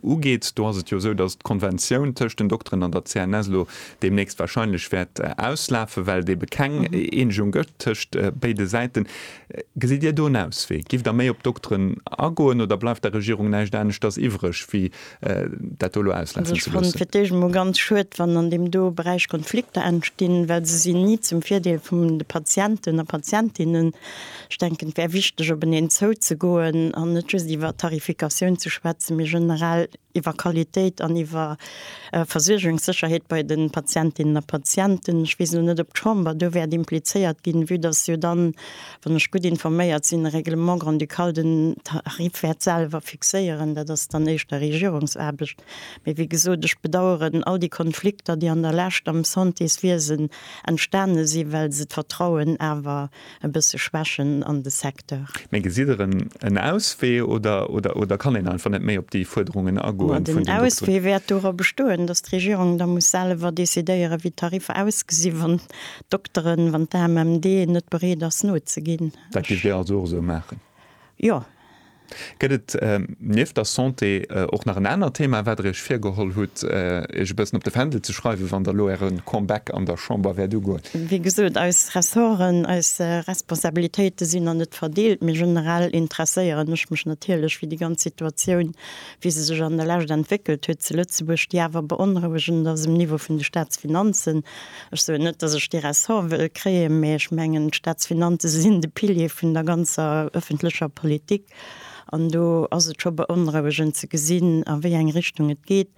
ugeet. Do ass et jo esou, datt d'Konventioun tëscht den Dokteren an der CNS elo deemnächst warscheinlech wäert auslafen, well et ebe keng Eenegung gëtt tëscht béide Säiten. Gesitt Dir do en Auswee? Giff Der méi op d'Dokteren agoen oder bleift der Regierung näischt aneschters iwwreg, wéi dat do elo auslafen ze loossen? Also ech fannen et fir d'éischt emol ganz schued, wann an deem do Beräich Konflikter entstinn, well se sinn ni zum Virdeel vum de Patienten a Patientinnen. Ech denken, et wär wichteg, op eneen zouzegoen an net just iwwer Tarifikatioun ze schwätzen, mee generell iwwer Qualitéit an iwwer Versuergungssécherheet bei de Patientinnen a Patienten. Ech weess elo net, ob d'Chamber do wäert implizéiert ginn, vue dass jo dann, wann ech gutt informéiert sinn, e Règlement grand-ducal den Tarif wäert selwer fixéieren. Dat ass dann éischter Regierungsaarbecht. Mee wéi gesot, ech bedauern all déi Konflikter, déi an der Lescht am Santéswiesen entstane sinn, well se d'Vertrauen awer e bësse schwächen an de Secteur. Mee gesitt Der en Auswee oder kann een einfach net méi op déi Fuerderungen agoen vun den Dokteren? Den Auswee wäert dora bestoen, datt d'Regierung da muss selwer decidéieren, wéi d'Tariffer ausgesi wann d'Dokteren, wann d'AMMD net bereet ass nozeginn. Dat géift Dir also och esou maachen? Jo, Gëtt et nieft der Santé och nach en anert Thema, wat Der Iech virgeholl hutt, Iech e bëssen op de Fändel ze schreiwen, wann Der elo Äre Comeback an der Chamber wäert ugoen? Wéi gesot, eis Ressorten, eis Responsabilitéite sinn an net verdeelt, mee generell interesséieren ech mech natierlech fir déi ganz Situatioun, wéi se sech an der Lescht entwéckelt huet zu Lëtzebuerg, déi awer beonrouegend ass um Niveau vun de Staatsfinanzen. Ech soen net, dass ech dee Ressort wëll kréien, mä ech mengen, d'Staatsfinanze sinn de Pilier vun der ganzer öffentlecher Politik. An do ass et scho beonrouegend ze gesinn, a wéi eng Richtung et geet,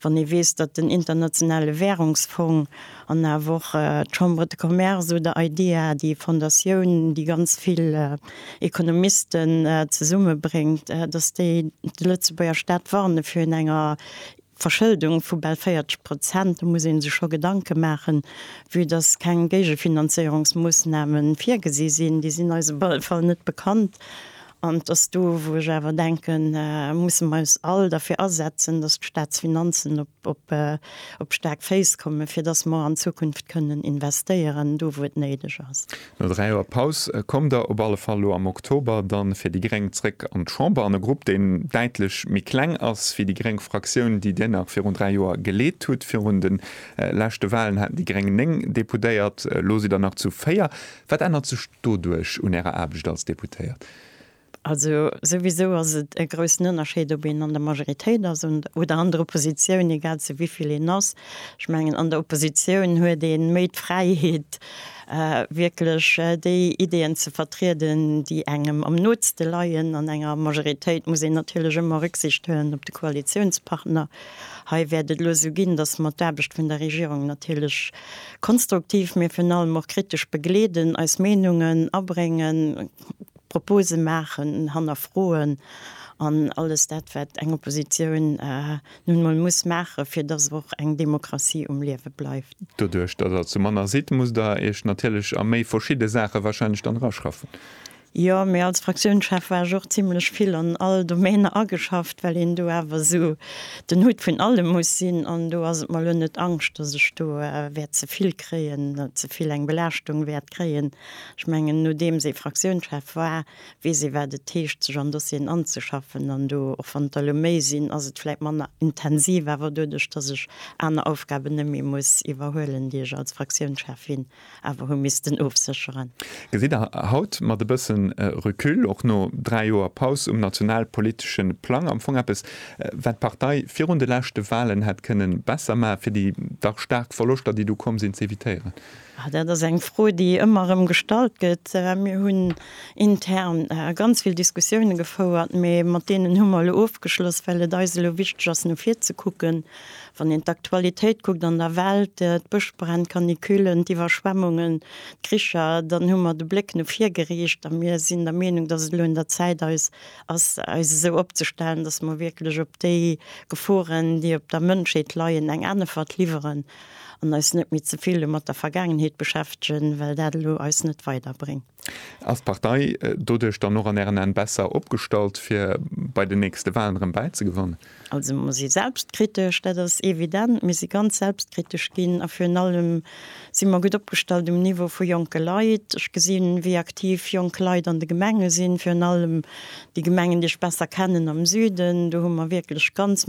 wann ee weess, datt den Internationale Währungsfong an awer och d'Chambre de Commerce oder IDEA, déi Fondatioun, déi ganz vill Ekonomisten zesummebréngt, datt déi de Lëtzebuerger Staat warne virun enger Verschëldung vu bal 40 Prozent, do muss ee sech scho Gedanke maachen. Vue dass keng Géigefinanzéierungsmoossname virgesi sinn, déi sinn eis op alle Fall net bekannt, an et ass do, wou ech awer denken, musse mer eis all derfir asetzen, dass d'Staatsfinanzen op staark Féiss kommen, fir dass mer an Zukunft kënnen investéieren, do wou et néideg ass. No 3 Joer Paus koum der op alle Fall lo am Oktober dann fir déi Gréng zréck an d'Chamber an e Grupp deen däitlech méi kleng ass wéi déi Gréng Fraktioun déi Dir nach virun 3 Joer geleet hutt. Virun den leschte Wahlen haten déi Gréng 9 Deputéiert, lo sidd der nach zu 4. Wat ännert sech doduerch un Ärer Aarbecht als Deputéiert? Also souwisou ass et e groussen Ënnerscheed, ob een an der Majoritéit ass oder an der Oppositioun, egal zu wéi vill een ass. Ech mengen, an der Oppositioun huet ee méi d'Fräiheet, wierklech déi Ideeën ze vertrieden, déi engem am nootste leien. An enger Majoritéit muss een natierlech ëmmer Rücksicht huelen op de Koalitiounspartner. Hei wäert et elo esou ginn, datt mer d'Aarbecht vun der Regierung natierlech konstruktiv, mee virun allem och kritesch begleeden, eis Meenungen abréngen, Propose maachen, hannerfroen an alles dat, wat eng Oppositioun nun emol muss maachen, fir dass och eng Demokratie um Liewe bleift. Doduerch, dass Der zu manner sidd, musst Der Iech natierlech a méi verschidde Saache wahrscheinlech dann eraschaffen. Jo, mee als Fraktiounschef war ech och zimlech vill an all Domainer ageschafft, well een do awer esou den Hutt vun allem muss sinn. An do ass et mer elo net Angscht, dass ech do wäert ze vill kréien, ze vill eng Belaaschtung wäert kréien. Ech mengen, nodeems ee Fraktiounschef war, weess ee wat et heescht sech an Dossieren anzeschaffen an do, och wann der elo méi sinn, ass et vläit manner intensiv, awer doduerch datt ech aner Aufgaben net méi muss iwwerhuelen, déi ech als Fraktiounschefin awer hu missten ofsécheren. Gesitt Der haut mat e bësse Recul, och no dräi Joer Paus um nationalpolitesche Plang, am Fong eppes wat d'Partei virun de leschte Wahlen hätt kënnen besser maachen, fir déi dach staark Verloschter déi du komm sinn z'evitéieren? Dat ass eng Fro, déi ëmmer erëm gestallt gëtt. Mir hunn intern ganz vill Diskussioune gefouert, mee mat deenen hu mer elo ofgeschloss, well et eis elo wichteg ass, no vir ze kucken. Wann een d'Aktualitéit kuckt an der Welt, d'Bëschbränn, d'Canicullen, d'Iwwerschwemmungen, d'Kricher, dann hu mer de Bléck no vir geriicht a mir sinn der Meenung, datt et elo un der Zäit eis ass, eis esou opzestellen, datt mer wierklech op déi Geforen, déi op der Mënschheet leien, eng Änefert liwweren. An eis net méi ze vill mat der Vergaangenheet beschäftegen, well dat elo eis net weiderbréngt. Ass d'Partei doduerch dann och an Ären An besser opgestallt, fir bei den nächste Wahlen erëm bäizegewannen? Also mer si selbstkritesch, dat ass evident. Mir si ganz selbstkritesch ginn a virun allem si mer gutt opgestallt um Niveau vu jonke Leit. Ech gesinn, wéi aktiv jonk Leit an de Gemenge sinn, virun allem déi Gemengen, déi ech besser kennen am Süden. Do hu mer wierklech ganz.